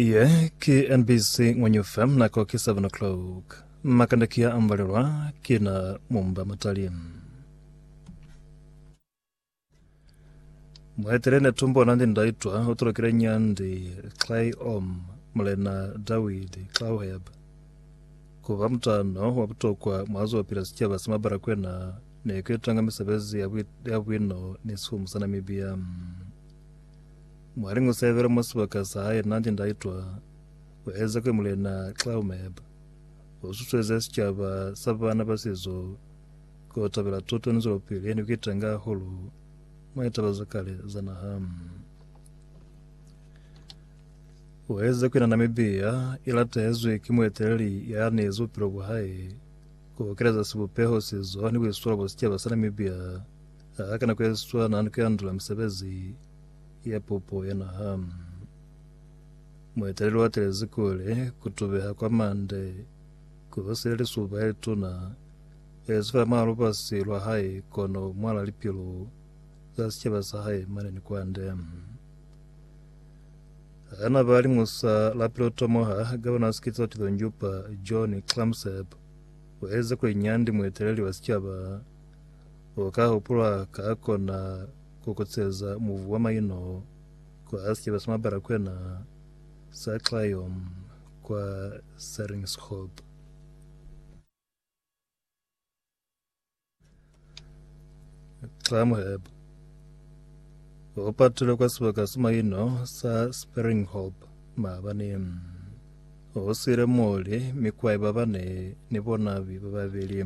Iye ki NBC Ngwenyu FM nako ki 7 o'clock. Makanda kia ambalelwa kina mumba matali. Mwaitele ne tumbo na ndi ndaitwa o tulokile nyandi Clay Om mulena Dawid Claweb kuba mutano wa butokwa mwazo pila sicaba sa mabara kwena ne kwitanga misebezi ya bwi- ya bwino ni sihumu sa Namibia. Mwaling u sebela mwa sibaka sa hae n'a nde n'a itwa ku eza kuli Mulena Claumeb u susueza sicaba sa baana ba sizo ku tabela tuto ni zwelopili ye ne ku itanga hahulu mwa litaba za kale za naha. U eza kuli na Namibia i latehezwi ki mueteleli ya anezi bupilo bwa hae ku okeleza sibupeho, sizo ni buiswalo bwa sicaba sa Namibia Ka nako yeswana, ni kuyandula misebezi ya pupo ya naha. Mueteleli watelezi kule kutubeha kwa mande kuhosile lisuba yelituna yezifela mwa lubasi lwa hae kono mwala lipilu za sicaba sa hae mane ni kwande. Hana ba liñusa la pilotomoha Gavana Skitso Tilonjupa John Clamsep waheze kuli Nyandi mueteleli wa sicaba U ka hupulwa ka kona ku kuceza muvu wa maino kwa Archbishop sa Mabalakwena sa Clion kwa Serinxhoop. Clamheb. U patile kwa sibaka sa maino sa Springhop maabani. U siile muli mi kwai babane ni bonabi bababeli.